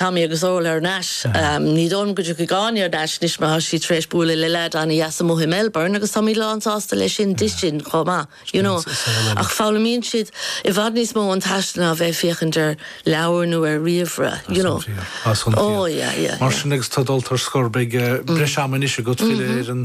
Tá mé agus Órla thar n-ais. Ní dóigh liom go dtiocfaidh Áine thar n-ais anois mar tá sí tar éis bualadh le leaid an-deas amuigh i Melbourne agus táimid lán sásta leis sin di sin chomh maith, you know. Ach foghlaimíonn siad i bhfad níos mó ón taisteal ná bheith ag féachaint ar leabhair nó ar ríomhaire, you know. Tá san fíor. Tá san fíor. Mar sin agus tú dulta ar scor beidh breis ama anois agat filleadh ar an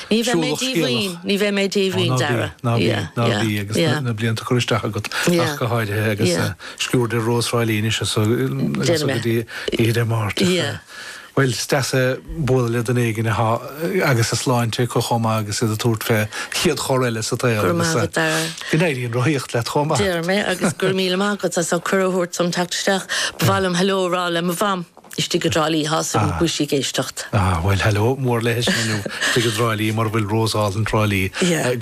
Ní bheidh mé díomhaoin, ní bheidh mé díomhaoin, Dara. Ná bí, ná bí, ná bí, agus na blianta curtha isteach agat ach go háirithe agus sciuird ar Rós Thrá Lí anois agus go dtí Oíche Dé Máirt. Bhuel, is deas bualadh le duine éigin agus a sláinte acu chomh maith agus iad ag tabhairt fén chéad chor eile sa tsaol. Go raibh maith agat, Dara. Go n-éirí an rothaíocht leat chomh maith. Deir mé, agus go raibh míle maith agat as an gcuireadh a thabhairt dom teacht isteach. Ba mhaith liom hello a rá le mo mham. istigh i dTrá Lí, tá súil agam go bhfuil sí ag éisteacht. Ah, bhuel, hello mór léithi sin inniu, istigh i dTrá Lí, mar a bhfuil Rós Álainn Thrá Lí,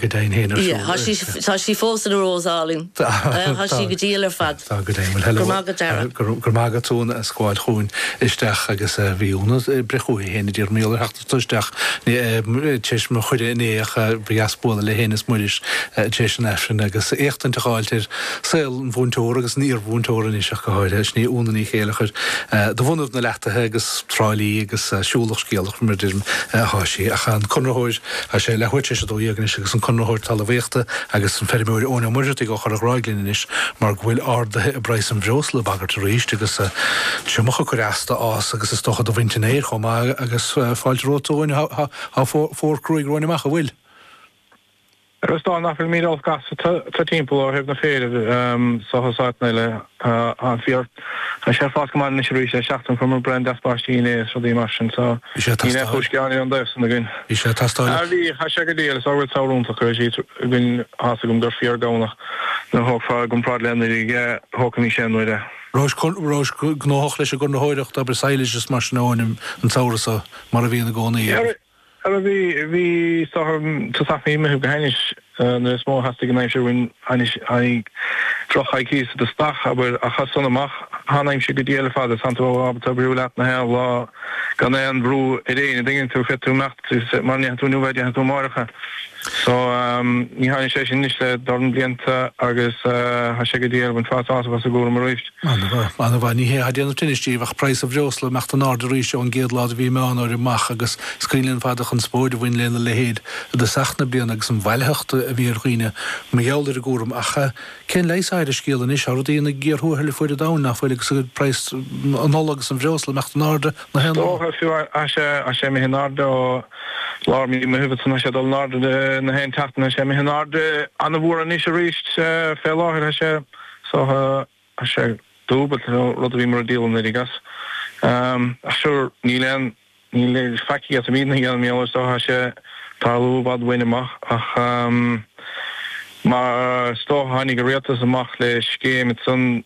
go deimhin féin, ar siúl. Tá sí, tá sí fós ina Rós álainn, tá sí go diail ar fad. Tá go deimhin, hello, go raibh maith agat Dara, go raibh maith agat a Úna as bualadh chugainn isteach agus bhí Úna breith chugainn féin a d'iarr Míl ar theacht. Tá isteach, tar éis mo chuireadh inné ach ba dheas bualadh léi fhéin is Muiris tar éis an Aifrinn agus éachtaint a dh'fháilt ar saol an mhúinteora agus an iarmhúinteora anois ach go háirithe. Sin í Úna Ní Chéilleachair de bhunadh na Leataithe agus Trá Lí agus siúlach scéalach mar a deirim atá sí. Ach an Conraitheoir, tá sé leathuair tar éis a dó dhéag anois, agus an Conraitheoir Talamhaíochta agus an Feirmeoir Eoin Ó Muircheartaigh ó Chorra Ghráig linn anois mar go bhfuil arduithe i bpraghas an bhreosla ag bagairt arís agus triomach ag cur as do fhás agus is dócha do bhaint an fhéir chomh maith. Agus fáilte romhat, a Eoin, tá fómhar cruaidh romhainn amach, an bhfuil? Is dócha nach bhfuilimid olc as thart timpeall ó thaobh an fhéir seachas áiteanna eile, an féar, tá sé ag fás go maith anois arís, le seachtain fuaireamar braon deas báistí inné is rudaí mar sin so níl aon chúis ghearáin ón dtaobh san againn. Bhí sé ag teastáil. Ah bhí, tá sé go diail, is ábhar samhradh iontach a bhí siad againn, tá a fhios agam gur fíor Domhnach nuair a thógfá i gcomparáid le anuraidh, thógfaimís é nuair a. Rabhais gnóthach leis an gConraitheoireacht, obair sadhlais is mar sin a Eoin an samhradh seo, mar a bhíonn i gcónaí agat. Ara bhí, bhí is dócha tosach mí an Mheithimh go hainnis nuair is mó a theastaigh an aimsir uainn anois aghaidh, droch-choicíos i dtosach, abair, ach as san amach tá an aimsir go diail ar fad, tánn tú ábalta oibriú leat nach aon lá gan aon bhrú ar éinne, an dtuigeann tú, féadfaidh tú imeacht mara ndéanann tú inniu é, déanfaidh tú amáireach é. So, ní thaithin sé sin anois le dorn blianta agus tá sé go diail, bhain fad sásamh as an gcúram arís. An-mhaith, an-mhaith. Ní hé atá ag déanamh tinnis díbh ach praghas an bhreosla, imeacht in airde arís ón gcéad lá de mhí Meán Fhómhair amach agus is cuimhin linn ar fad an chonspóid a bhain lena leithéid i dtosach na bliana agus an bhailitheacht a bhí ar dhaoine mar gheall ar an gcúram. Ach cén leigheas atá ar an scéal anois? Tá rudaí ina gcíor thuathail ar fuaid an domhain, nach bhfuil, agus praghas an ola agus an bhreosla imeacht in airde. Is dócha tá sé imithe in airde ó lár mí Meitheamh tá sé ag dul in airde na haon tseachtain tá sé imithe in airde an-mhór anois arís fé láthair tá sé is dócha tá sé dúbailt an rud a bhíomar ag díol anuraidh as ach sure níl aon níl aon faic a fhéadaimid a dhéanamh mar is dócha tá sé ag tarlú i bhfad uainn amach ach mar is dócha tháinig an rialtas amach le scéim ansan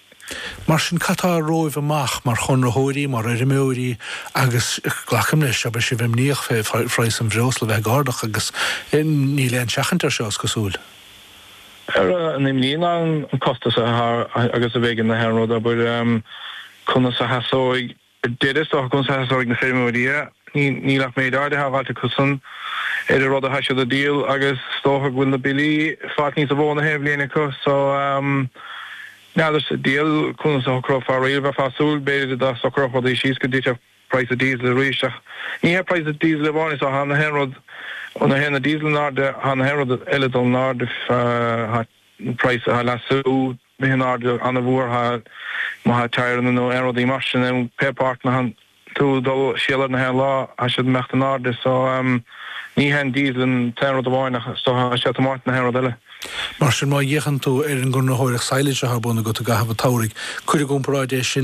Mar sin, cad tá romhaibh amach mar chonraitheoirí, mar fheirmeoirí agus, glacaim leis go mbeidh sibh imníoch fé phraghas an bhreosla bheith ag ardach agus níl aon tseachaint air seo, is cosúil. Tá an-imní ann, an costas atá air agus a bheidh na haon rud, abair, conas a sheasóidh daoine é, is dócha, conas a sheasóidh na feirmeoirí é, níl ach méid áirithe le fáilt acusan ar an rud atá siad a dhíol agus is dócha go bhfuil na billí ag fáilt níos mó na haon bhliain acu. So ehm. n'fheadar sa diabhal conas a shocrófar é, bheifeá ag súil, b'fhéidir dá socródh rudaí síos go dtitfeadh praghas an díosail arís ach ní hé praghas an díosail amháin atá, tá na haon rud, nuair a théann an díosal in airde tá na haon rud eile ag dul in airde, tá praghas an leasú. imithe in airde an-mhór, tá, má tá tyreanna nó aon rudaí mar sin ann. Pé páirteanna atánn tú ag dul ag soláthar na haon lá, tá siad ag imeacht in airde. So, ní hé an diesel an t-aon rud amháin ach is dócha tá sé ag tiomáint na haon rud eile. Mar sin, má fhéachann tú ar an gconraitheoireacht sadhlais atá ar bun agat i gcaitheamh an tsamhraidh, cuir i gcomparáid é sin